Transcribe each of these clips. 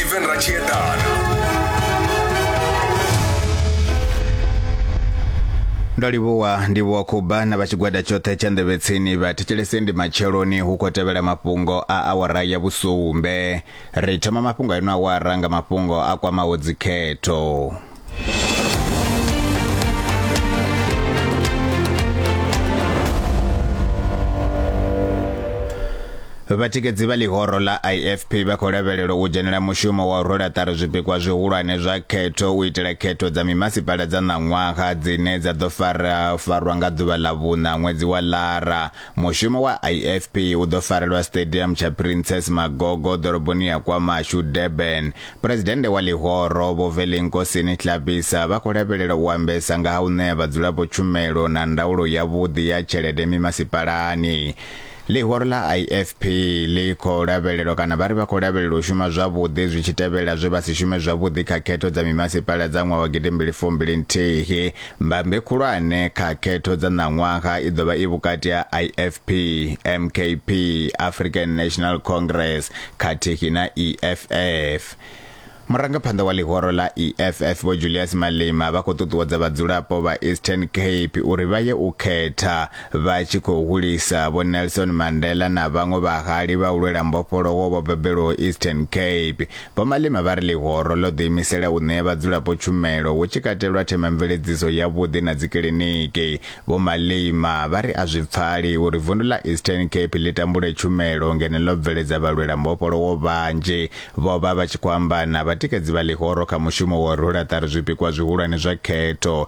Steven Rachiedana. ndo livhuwa ndivhuwa khuba na vha tshigwada tshoṱhe tsha nḓevhetsini vha thetshelese ndi matsheloni hu khou tevhela mafhungo a awara ya vhusumbe ri thoma mafhungo a ino awara nga mafhungo a kwamaho dzikhetho vhatikedzi vha ḽihoro ḽa ifp vha khou lavhelelwa u dzhenela mushumo wa u rwela ṱari zwipikwa zwihulwane zwa khetho u itela khetho dza mimasipala dza ṋaṅwaha dzine dza ḓo fara farwa nga ḓuvha ḽa vhuṋa ṅwedzi wa lara Mushumo wa IFP u ḓo farelwa Stadium tsha Princess Magogo ḓoroboni ya KwaMashu, Durban. Phuresidennde wa ḽihoro, Vho Velinkosini Hlabisa, vha khou lavhelela u ambesa nga ha u ṋea vhadzulapo tshumelo na ndaulo yavhuḓi ya tshelede mimasipalani. Ḽihoro ḽa IFP ḽi khou lavhelelwa kana vha ri vha khou lavhelela u shuma zwavhuḓi zwi tshi tevhela zwe vha si shume zwavhuḓi kha khetho dza mimasipala dza ṅwaha wa gidimbili fumbili nthihi. Mbambe khulwane kha khetho dza ṋaṅwaha i ḓo vha i vhukati ha IFP, MKP, African National Congress khathihi na EFF. Murangaphanḓa wa ḽihoro ḽa EFF Vho Julius Malema vha khou ṱuṱuwedza vhadzulapo vha Eastern Cape uri vha ye u khetha vha tshi khou hulisa Vho Nelson Mandela na vhaṅwe vhahali vha u lwela mbofholowo vho bebelwaho Eastern Cape Vho Malema vha ri ḽihoro ḽo ḓiimisela u ṋea vhadzulapo tshumelo hu tshi katelwa themamveledziso yavhuḓi na dzikiḽiniki. Vho Malema vha ri a zwi pfali uri vundu ḽa Eastern Cape ḽi tambule tshumelo ngeno ḽo bveledza vhalwela mbofholowo vhanzhi. Vho vha vha tshi khou amba na vhatikedzi vha ḽihoro kha mushumo wa u rwela ṱari zwipikwa zwihulwane zwa khetho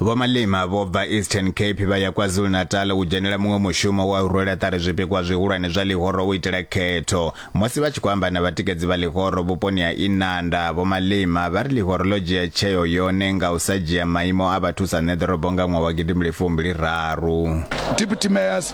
vhomalima vho bva eastern cape vha ya kwazulu-natal u dzhenela muṅwe mushumo wa u rwela ṱari zwipikwa zwihulwane zwa ḽihoro u itela khetho musi vha tshi khou amba na vhatikedzi vha ḽihoro vhuponi ha inanda vhomalima vha ri ḽihoro ḽo dzhia tsheo yone nga u sa dzhia maimo a vhathu sa neḓorobo nga ṅwaha wa gidimbili fumbili raru deputy mayors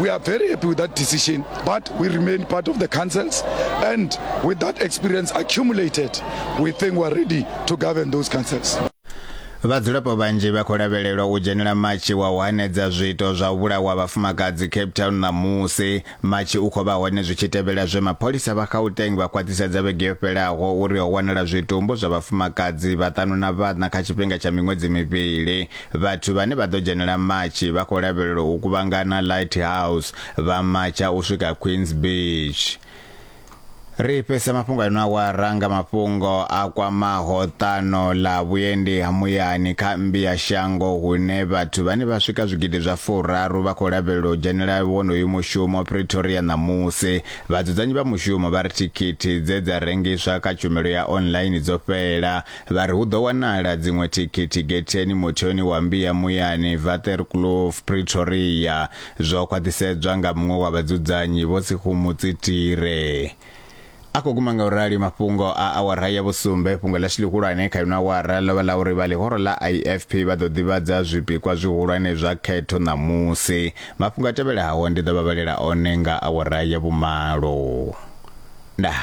We are very happy with that decision, but we remain part of the councils. And with that experience accumulated, we think we're ready to govern those councils. vhadzulapo vhanzhi vha khou lavhelelwa u dzhenela matshi wa u hanedza zwiito zwa u vhulawa vhafumakadzi cape town ṋamusi matshi u khou vha hone zwi tshi tevhela zwe mapholisa vha gauteng vha khwaṱhisedza vhege yo fhelaho uri ho wanala zwitumbu zwa vhafumakadzi vhaṱanu na vhaṋa kha tshifhinga tsha miṅwedzi mivhili Vhathu vhane vha ḓo dzhenela matshi vha khou lavhelelwa u kuvhangana Lighthouse vha matsha u swika Queens Beach. Ri fhesa mafhungo ano awara nga mafhungo a kwamaho ṱano ḽa vhuendi ha muyani kha mmbi ya shango hune vhathu vhane vha swika zwigidi zwa furaru vha khou lavhelelwa u dzhenela wonoyu mushumo Pretoria ṋamusi. Vhadzudzanyi vha mushumo vha ri thikhithi dze dza rengiswa kha tshumelo ya online dzo fhela Vha ri hu ḓo wanala dziṅwe thikhithi getheni muthoni wa mmbi ya muyani Waterkloof, Pretoria, zwo khwaṱhisedzwa nga muṅwe wa vhadzudzanyi Vho Sekhumu Tsitire. A khou guma nga u rali mafhungo a awara ya vhusumbe. Fhungo ḽashu ḽihulwane kha ino awara ḽo vha ḽa uri vha ḽihoro ḽa IFP vha ḓo ḓivhadza zwipikwa zwihulwane zwa khetho ṋamusi. Mafhungo a tevhelaho ndi ḓo vha vhalela one nga awara ya vhumalo. Ndaa.